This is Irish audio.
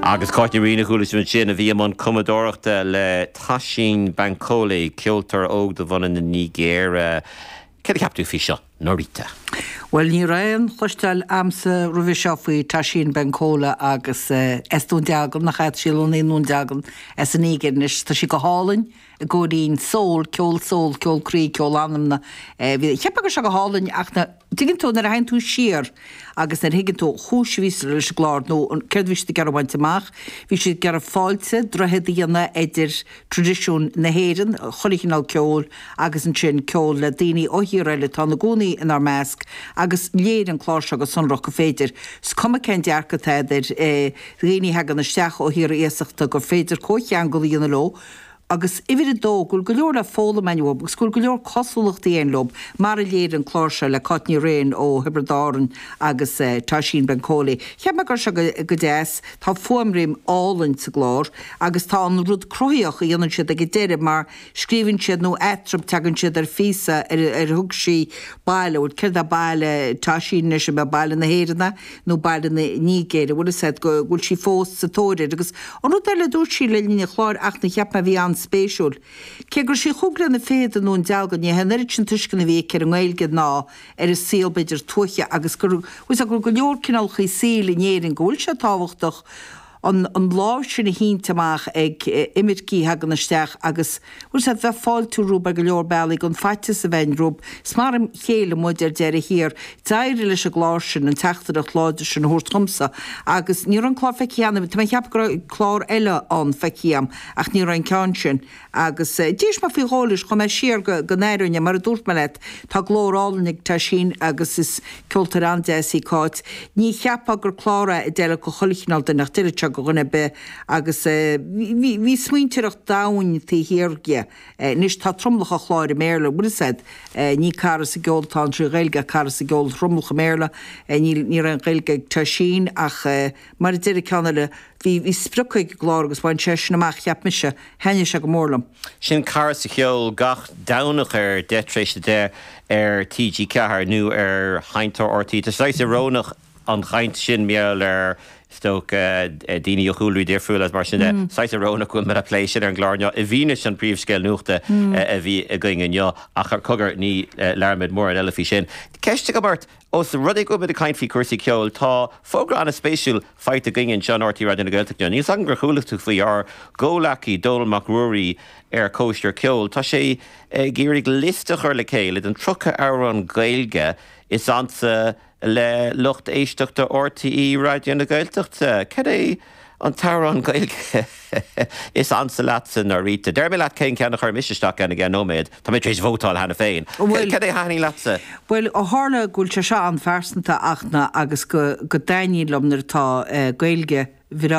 Agus Cáit Ní Riain a chuala sibh ansin, a bhí i mbun cumadóireachta le Toshín Bankole, ceoltóir óg de bhunadh na Nigéire. Céard a cheap tú faoi seo, Norita? Bhuel, ní raibh aon chloisteáil agamsa roimhe seo faoi Toshín Bankole agus is i nDún Dealgan, nach ea? Sílim i nDún Dealgan as an Nigéir. Anois, tá sí go hálainn i gcóirín soul, ceol soul, ceol croí, ceol anama. Cheapfá go raibh sé go hálainn ach na. Tuigeann tú nuair a théann tú siar agus nuair a thuigeann tú an chúis a bhíos leis an gclár nó an céard a bhí siad ag iarraidh a bhaint amach. Bhí siad ag iarraidh fáilte, droichead a dhéanamh idir tradisiúin na hÉireann, chuile chineál ceoil agus ansin ceol le daoine ó thíortha eile atá ina gcónaí inár measc agus léirigh an clár seo go sonrach gur féidir, 's cuma cén dearcadh atá a'd ar dhaoine a thagann isteach ó thíortha iasachta, gur féidir comhcheangal a dhéanamh leo, agus uimhir a dó, go bhfuil go leor le foghlaim a'inn uathu agus go bhfuil go leor cosúlachtaí a'inn leo, mar a léirigh an clár seo le Cáit Ní Riain ó Thiobraid Árann agus Toshín Bankole. Cheap mé go raibh sé go deas, tá fuaimrian álainn sa gclár agus tá an rud cruthaíoch a dhéanann siad ag an deireadh mar scríobhann siad nó eatarthu teagann siad ar phíosa ar thug sí baile, bhuel céard é baile Toshín anois, ab é baile na hÉireann é? nó baile na Nigéire a bhfuil fhios agat go bhfuil sí fós sa tóir air agus an rud eile a dúirt sí le linn an chláir ach na cheap mé a bhí an-spéisiúil cé go raibh sí cúig bliana fichead i nDún Dealgan ní hé an oiread sin tuisceana a bhí aici ar an nGaeilge ná ar an saol b'fhéidir tuaithe agus bhfuil fhios agat go bhfuil go leor cineálachaí saoil in Éirinn go bhfuil sé tábhachtach an an lámh sin a shínt amach ag imircigh a thagann isteach agus bhuel sea bheith fáiltiú rompu ar go leor bealaí gan faitíos a bheith a'inn rompu. Is mar a chéile muid ar deireadh thiar. D'éirigh leis an gclár sin an teachtaireacht láidir sin a thabhairt dhomsa agus ní raibh an clár feicthe a'm, tá mé ag ceapadh go raibh clár eile ann feicthe a'm ach ní raibh an ceann sin Agus d'éist mé faoi dhó leis, chuaigh mé siar go n-aireoinn é, mar a dúirt mé leat, tá glór álainn ag Toshín agus is ceoltóir an-deas í Cáit. Ní cheapfá gur clár é a d'fheilfeadh do chuile chineál duine ach d'fheilfeadh sé do dhuine ar bith agus bhí smaointeoireacht domhain taobh thiar dhe. Anois tá tromlach an chláir i mBéarla, a bhfuil fhios a'd, ní cara sa gceol atá ann trí Ghaeilge ach cara sa gceol tromlach i mBéarla, níl aon Ghaeilge ag Toshín ach. Mar a deir an ceann eile, bhí sprioc ag an gclár agus bhain sé sin amach, cheap mise. Thaitnigh sé go mór liom. Sin Cara sa Cheol gach Domhnach ar 10 tar éis a deich ar TG4 nó ar Sheinnteoir RTÉ. Tá sé saghas ioróineach an chaint sin mar gheall ar is dócha daoine ó chúlraí difriúla agus mar sin de. Saghas ioróineach go bhfuil mé le plé sin ar an gclár inniu i bhfianaise an príomhscéal nuachta a bhí againn inniu ach ara cogar ní labhróimid mórán eile faoi sin. Ceist agam ort, Ós rud é go bhfuil muid ag caint faoi chúrsaí ceoil, tá fógra ana spéisiúil faighte againn anseo in RTÉ Raidió na Gaeltachta. Níl 's agam ar chuala tú faoi ár gcomhleacaí Dónall Mac Ruairí ar Cóisir Ceoil. Tá sé ag iarraidh liosta a chur le chéile den 30 amhrán Gaeilge is ansa le lucht éisteachta RTÉ Raidió na Gaeltachta. Cad é. An t-amhrán Gaeilge is ansa leatsa, Norita. Déarfaidh mé leat cén ceann a chuir mise isteach ann i gceann nóiméad. Tá mé tar éis vótáil cheana féin. Bhuel. Cad é a thaithnigh leatsa? Bhuel, ó tharla go bhfuil sé seo an-phearsanta, ach ná, agus go, go dtaitníonn liom nuair atá Gaeilge bhreá.